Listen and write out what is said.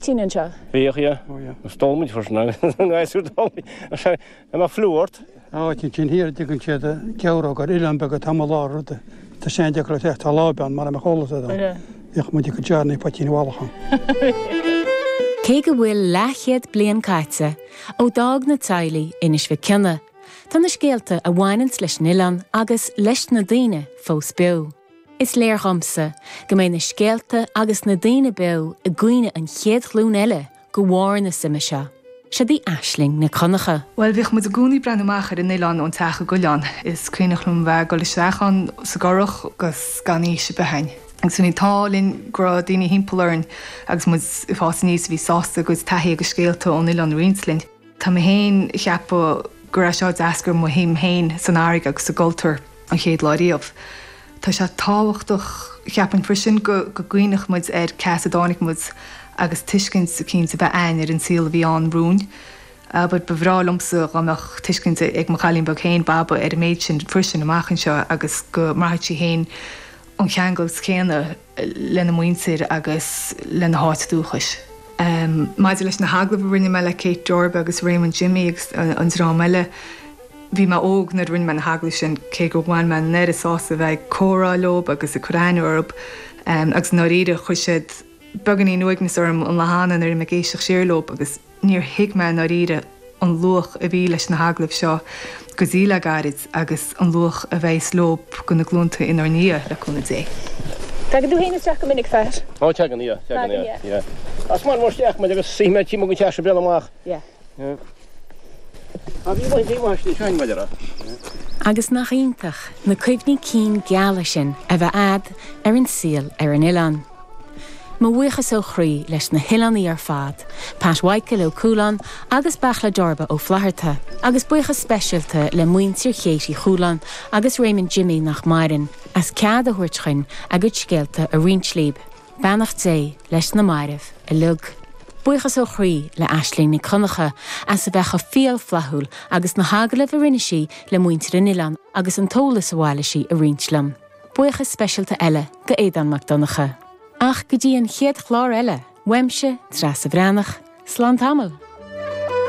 tinn anseo. Bhíodh a. stómaí freisin agus a ngaisciú dóibh. An mbeadh fliú ort? áit ansin thiar a dtugann siad Geabhróg ar oileán beag atá amuigh i lár ruda. Tá sé an-deacair le teacht ar láimh ann, mara mbeadh eolas agat ann. Bhíodh muid ag cur deárnaí i bpoitín bhallach ann. Cé go bhfuil leathchéad bliain caite ó d'fhág na teaghlaigh Inis Mhic Cionaith, tá na scéalta a bhaineanns leis an oileán agus leis na daoine fós beo. Is léir dhomsa go mbeidh na scéalta agus na daoine beo i gcuimhne an chéad ghlúin eile go bharr na suime seo. Siod í Aisling Nic Dhonncha. Bhuel, bhíodh muid i gcónaí ag breathnú amach ar an oileán ón teach i gCuilleán. Is cuimhneach liom a bheith ag dul isteach ann sa gcurach agus gan fhios ar bith a'inn agus bhí an t-ádh linn go raibh daoine thimpeall orainn agus muid ag fás aníos a bhí sásta a gcuid taithí agus scéalta ón oileán a roinnt linn. Tá mé féin ag ceapadh gur as seo a d'eascair mo shuim féin san fharraige agus sa gcultúr an chéad lá riamh. Tá sé tábhachtach, cheapfainn freisin, go gcuimhneodh muid ar cé as a dtáinig muid agus tuiscint eicínt a bheith a'inn ar an saol a bhí ann romhainn. Abair, ba bhreá liomsa dhá mbeadh tuiscint ag mo chailín beag féin, Baba, ar an méid sin freisin amach anseo agus go mbraithfeadh sí féin an ceanglas céanna. lena muintir agus lena háit dúchais. Maidir leis na hagallaimh a rinne mé le Kate Darba agus Raymond Jimmy agus an dream eile, bhí mé óg nuair a rinne mé na hagallaimh sin, cé gur bhain mé an oiread sásaimh a bheith ag comhrá leo agus ag cur aithne orthu, agus i ndáiríre, chuir siad beagáinín uaignis orm an lá cheana nuair a bhí mé ag éisteacht siar leo agus. Níor thuig mé i ndáiríre an luach a bhí leis na hagallaimh seo go dtí le gairid agus an luach a bheas leo go na glúnta inár ndiaidh, le cúnamh Dé. Tagann tú féin isteach go minic, Fear? Ó, tagann, yeah, tagann, yeah, yeah. As Maigh Nuad isteach muid agus suífidh mé timpeall go teas an bliain amach. Yeah. Yeah. Agus bhí mé istigh seo in Madeira. Yeah. Agus nach iontach na cuimhní cinn geala sin a bheith a'd ar an saol ar an oileán. Mo bhuíochas ó chroí leis na hoileánaigh ar fad, Pat Mhichael Ó Cualáin agus Beartla Darba Ó Flatharta, agus buíochas speisialta le muintir Chéit Uí Chualáin agus Raymond Jimmy, nach maireann, as cead a thabhairt dhuinn a gcuid scéalta a roinnt líb. Beannacht Dé leis na mairbh uilig. Buíochas ó chroí le Aisling Nic Dhonncha as a bheith cho fial flaithiúil agus na hagallaimh a rinne sí le muintir an oileáin agus an t-eolas a bhailigh sí a roinnt liom. Buíochas speisialta eile d'Aodán Mac Donncha. Ach go dtí an chéad chlár eile, uaimse, Treasa Bhreathnach, slán tamall.